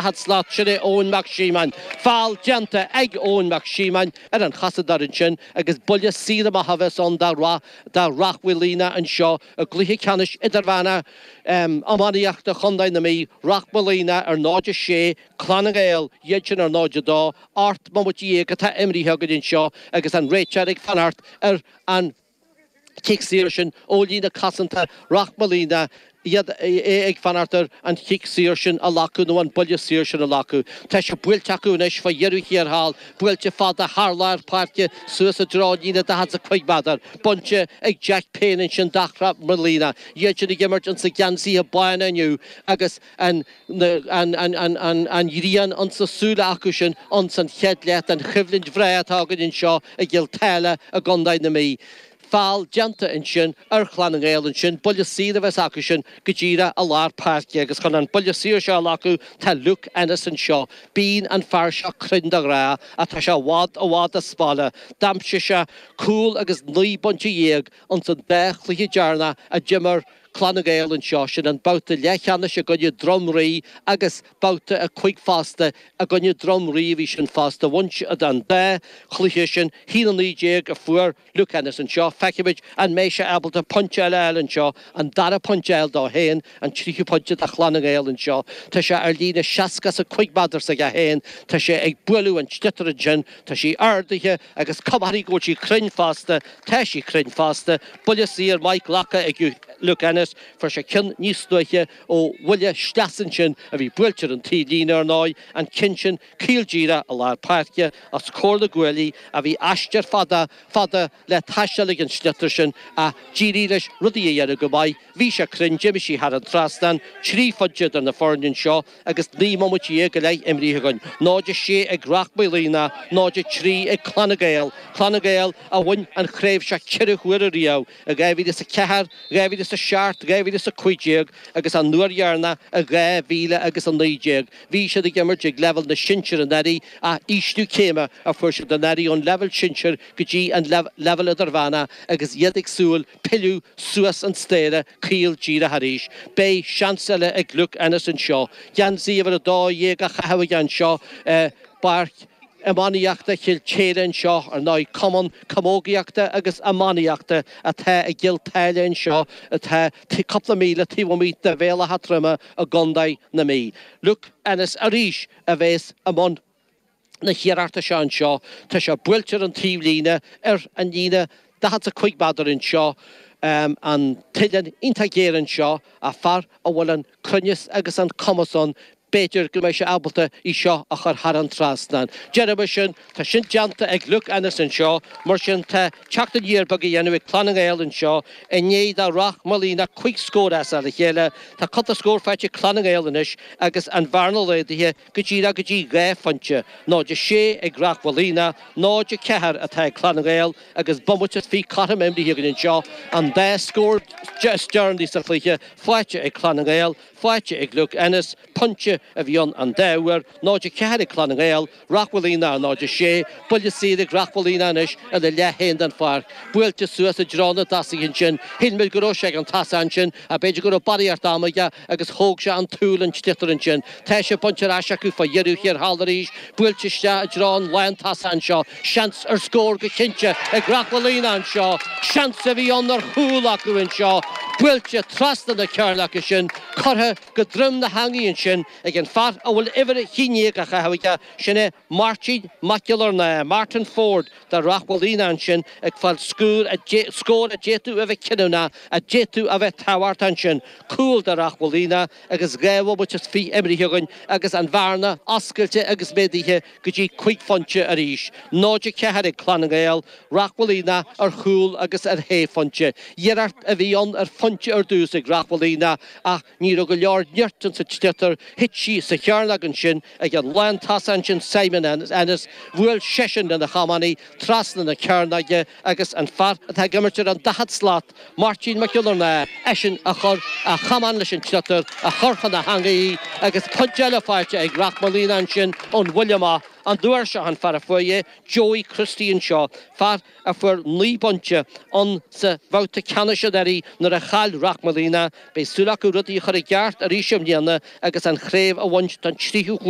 At slot, Sin é Eoin Mac Síomáin. Feall déanta ag Eoin Mac Síomáin ar an chosantóir ansin agus buille saor amach a bheas ann do Ráth Moliain anseo i gcluiche ceannais idirmheána iománaíochta Chondae na Mí. Ráth Moliain ar 0-6, Clann na nGael iad sin ar 0-2. Ocht mbomaite dhéag atá imrithe againn anseo agus an réiteoir ag fanacht ar an chic saor sin ó líne chosanta Ráth Moliain, é ag fanacht ar an chic saor sin a ghlacadh nó an buille saor sin a ghlacadh. Tá sé buailte acu anois fá dheireadh thiar thall, buailte fada thar lár páirce suas i dtreo líne daichead is a cúig meadar, bainte ag Jack Payne ansin do Ráth Moliain, iad sin ag imirt ins na geansaithe bána inniu agus, an ghrian ins na súile acu sin ins an chéad leath den choimhlint bhreá atá againn anseo i gCill Táile i gCondae na Mí. Feall déanta ansin ar Chlann na nGael ansin buille saor a bheas acu sin go díreadh i lár páirce agus chun an buille saor seo a ghlacadh tá Luke Ennis anseo. Bíonn an fear seo cruinn de ghnáth ach tá sé i bhfad, i bhfad as baile. D'aimsigh sé cúl agus naoi bpointe dhéag ins an dá chluiche deireanacha a d'imir an Clann na nGael anseo, sin an babhta leathcheannais i gcoinne Droim Rí agus babhta a cúig fosta i gcoinne Droim Rí a bhí sin fosta. Bhain siad an dá chluiche sin. 1-19 a fuair Luke Ennis anseo. Feicfimid an mbeidh sé ábalta pointe eile a fháil anseo, an dara pointe a fháil dó féin, an tríú pointe do Chlann na nGael anseo. Tá sé ar líne seasca is a cúig meadar s'acu féin. Tá sé ag bualadh an tsliotair ansin. Tá sí ardaithe agus comharthaí go bhfuil sí cruinn fosta. Tá sí cruinn fosta. Buille saor maith glactha ag Luke Ennis. Fuair sé ceann níos luaithe ó bhuille sleasa ansin a bhí buailte ar an taobhlíne, ar ndóigh, an ceann sin caol díreach i lár páirce. Os comhair na gcuaillí ach bhí aistear fada, fada le taisteal ag an sliotar sin ach d'éirigh leis rudaí a dhéanamh go maith. Bhí sé cruinn, d'imigh sí thar an trasnán, trí phointe idir na foirne anseo. agus 19 mbomaite go leith imrithe againn, 0-6 ag Ráth Moliain, 0-3 ag Clann na nGael, Clann na nGael a bhain an chraobh seo ceithre huaire riamh, i 2004, 2007, 2015 agus an uair dheireanach i 2000 agus 19. Bhí siad ag imirt ag leibhéal na sinsear anuraidh ach ísliú céime a fuair siad anuraidh ón leibhéal sinsear go dtí an leibhéal idirmheánach agus iad ag súil pilleadh suas an staighre caol díreach arís. Beidh seans eile ag Luke Ennis anseo geansaí uimhir a dó dhéag á chaitheamh aige anseo i bPáirc Iománaíochta Chill Táile anseo. Ar ndóigh, cumann camógaíochta agus iománaíochta atá i gCill Táile anseo atá cúpla míle taobh amuigh de Bhéal Átha Troima i gContae na Mí. Luke Ennis arís a bheas i mbun na hiarrachta seo anseo, tá sé buailte ar an taobh líne, ar an líne daichead 's a cúig méadar anseo, an t-uilleann iontach géar anseo, ach fear a bhfuil an cruinneas agus an cumas ann, b'fhéidir go mbeidh sé ábalta í seo a chur thar an trasnán. Déarfaimis sin, tá sin déanta ag Luke Ennis anseo, mar sin tá teacht aniar beag á dhéanamh ag Clann na nGael anseo, i ndiaidh do Ráth Moliain cúig scór as a chéile, tá cúpla scór faighte ag Clann na nGael anois agus an bhearna laghdaithe, go dtí ná go dtí dhá phointe, 0 6 ag Ráth Moliain, 0 4 atá ag Clann na nGael agus bomaite is fiche cothrom imeartha againn anseo, an dá scór is deireanaí sa chluiche faighte ag Clann na nGael, faighte ag Luke Ennis, pointe a bhí ann an dá uair, 0 4 ag Clann na nGael, Ráth Moliain, 0 6, buille saor ag Ráth Moliain anois ina leath féin den pháirc, buailte suas i dtreo na dtosaithe ansin, shíl muid go raibh sé ag an tosaí ansin, Ach b'fhéidir go raibh barraíocht ama aige agus thóg sé an tsúil den tsliotar ansin. Tá sé bainte ar ais acu fá dheireadh thiar thall arís, buailte isteach i dtreo an lántosaí anseo. Seans ar scór go cinnte ag Ráth Moliain anseo. Seans a bhí ann ar chúl acu anseo. Buailte trasna na cearnóige ansin, curtha go droim na heangaí ansin ag an fear a bhfuil uimhir a haon déag á chaitheamh aige, sin é Máirtín Mac Giollarnáth, Martin Forde. Tá Ráth Moliain ansin ag fáil scór a d'fhéadfadh a bheith cinniúnach, a d'fhéadfadh a bheith tábhachtach ansin. Cúl do Ráth Moliain agus dhá bhomaite is fiche imeartha againn agus an bhearna oscailte agus méadaithe go dtí cúig phointe arís. 0-4 ag Clann na nGael, Ráth Moliain ar chúl agus ar shé phointe. Iarracht a bhí ann ar phointe ar dtús ag Ráth Moliain ach ní raibh go leor nirt ann sa tsliotar, thit sí sa chearnóg ansin, Ag an lántosaí ansin Simon Ennis, bhuail seisean lena chamán í trasna na cearnóige agus an fear atá ag imirt ar an daichead slat, Máirtín Mac Giollarnáth eisean a chuir a chamán leis an tsliotar a chuir chun na heangaí í agus pointe eile faighte ag Ráth Moliain ansin ón bhuille amach an uair seo, an fear a fuair é, Joey Christie anseo, fear a fuair naoi bpointe insa bhabhta ceannais anuraidh nuair a chaill Ráth Moliain. Beidh súil acu rudaí a chur i gceart arís i mbliana agus an chraobh a bhaint don tríú huair.